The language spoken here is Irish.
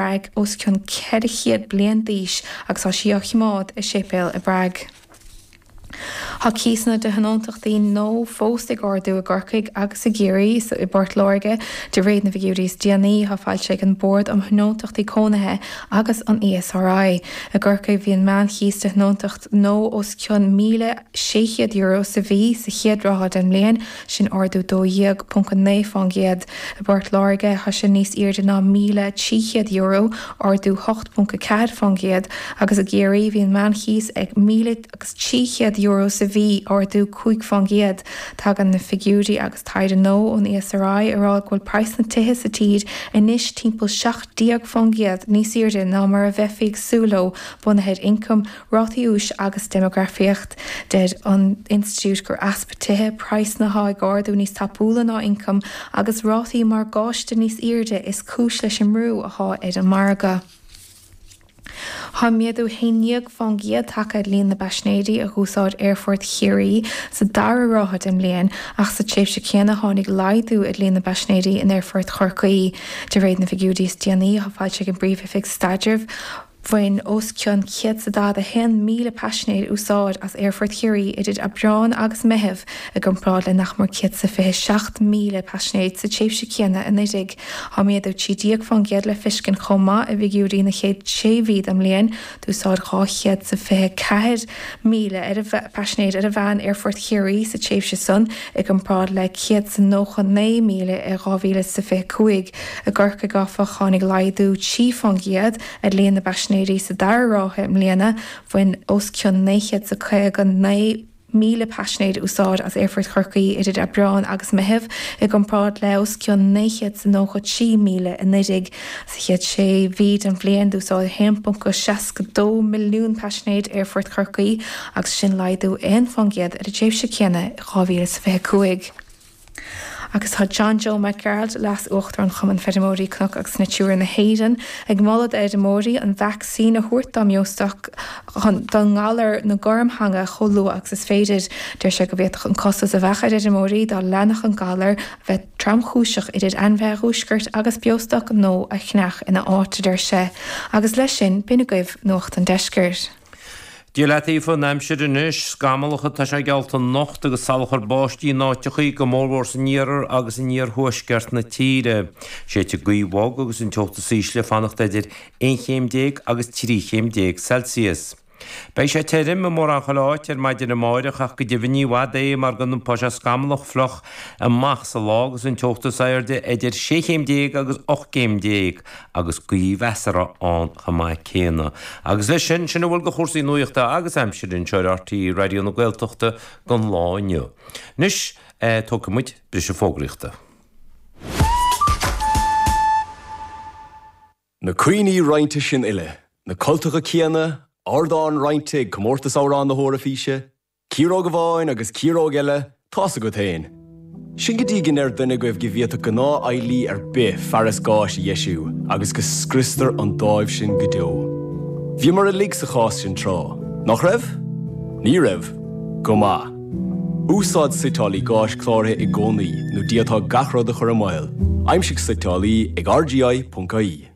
Prág, os cionn 400 bliain d'aois agus tá sí á chimeád i séipéal i bPrág. Thá cíosanna de thionóntachtaí nua fós ag ardú i gCorcaigh agus i gCiarraí is i bPort Láirge. De réir na bhfigiúirí is déanaí athá foilsithe ag an Bord um Thionóntachtaí Cónaithe agus an ESRI, i gCorcaigh bhí an meán-chíos de thionóntacht nua os cionn €1,600 sa mhí sa chéad ráithe den mbliain, Sin ardú 12.9 fán gcéad. I bPort Láirge, thá sé níos airde ná €1,300, ardú 8.4 fán gcéad, agus i gCiarraí, bhí an meánchíos ag €1,300 sa mhí, ardú cúig fán gcéad. Tagann na figiúirí agus taighde nua ón ESRI ag rá go bhfuil praghas na tithe sa tír anois timpeall 17 fán gcéad níos airde ná mar a bheifí ag súil leo bunaithe ar ioncaim Rátaí úis agus déimeagrafaíocht, Deir an Institiúid gur easpa tithe, praghsanna thá ag ardú níos tapúla ná ioncaim, agus rátaí morgáiste níos airde is cúis leis an mbrú athá ar an margadh. Thá méadú 11 fán gcéad tagtha ar líon na bpaisnéirí a dh'úsáid Aerfort Chiarraí sa dara ráithe den mbliain ach sa tréimhse céanna tháinig laghdú ar líon na bpaisnéirí in Aerfort Chorcaí de réir na bhfigiúirí is déanaí athá foilsithe ag an bPríomh-Oifig Staidrimh Bhain os cionn 141,000 paisinéir úsáid as Aerfort Chiarraí idir Aibreán agus Meitheamh i gcomparáid le nach mór 127,000 paisinéir sa tréimhse céanna anuraidh. Tá méadú 13% le feiscint chomh maith i bhfigiúirí na chéad sé mhí den mbliain d'úsáid 224,000 paisinéir ar a mheán Aerfort Chiarraí sa tréimhse san i gcomparáid le 199,000 i 2025. I gCorcaigh, áfach, tháinig laghdú trí fán gcéad ar líon na bpaisinéirí sa dara ráithe i mbliana. Bhain os cionn 959,000 paisinéir úsáid as Aerfort Chorcaí idir Aibreán agus Meitheamh, i gcomparáid le os cionn 993,000 anuraidh. Sa chéad sé mhí den bhliain, d'úsáid 1.62 milliún paisinéir Aerfort Chorcaí, agus sin laghdú aon fán gcéad ar an tréimhse céanna in 2025. Agus tá John Joe Mac Gearailt, Leas-Uachtarán Chumann Feirmeoirí Cnoc agus Natura na hÉireann, ag moladh d'fheirmeoirí an vacsaín a thabhairt dá mbeostoc don ngalar na gormtheanga chomh luath agus is féidir. Deir sé go bhféadfadh an costas a bheadh ar fheirmeoirí dá leanfadh an galar a bheith trom-chúiseach idir ainmhithe a dhiúscairt agus beostoc nua a cheannach ina áit, a deir sé. Agus leis sin, b'in agaibh Nuacht an Deiscirt. Dia leat Aoife an aimsir anois, scamallach atá sé geallta anocht agus salachar báistí in áiteachaí, go mórmhór san iarthar agus in iarthuaisceart na tíre. Séidfidh gaoth bhog agus an teocht is ísle ag fanacht eidir aon chéim déag agus trí chéim déag Celsius. Beidh sé tirim i mórán chuile áit ar maidin amáireach ach go deimhin ní i bhfad é mar go n-iompóidh sé scamallach fliuch amach sa lá agus an teocht is aoirde eidir sé chéim déag agus ocht gcéim déag. agus gaoth mheasartha ann chomh maith céanna. Agus leis sin, sin a bhfuil de chúrsaí nuachta agus aimsire againn anseo ar RTÉ Raidió na Gaeltachta go lá inniu. Anois, tógfaidh muid briseadh fógraíochta. Na cuimhní roinnte sin uile, na cultacha céanna, ardán roinnte ag Comórtas Amhrán na hEoraifíse, Ciaróg amháin agus ciaróg eile, tá's agat fhéin. Sin go dtí go ndeir duine agaibh go bhféadfadh gnáthfheighlí ar bith fearas gáis a dheisiú agus go scriostar an dáimh sin go deo. Bhíomar uilig sa chás sin tráth, nach raibh? Ní raibh? Go maith. Úsáid suiteálaí gáis cláraithe i gcónaí nó d'fhéadfá gach rud a chur i mbaol. Aimsigh suiteálaí ag rgi.ie.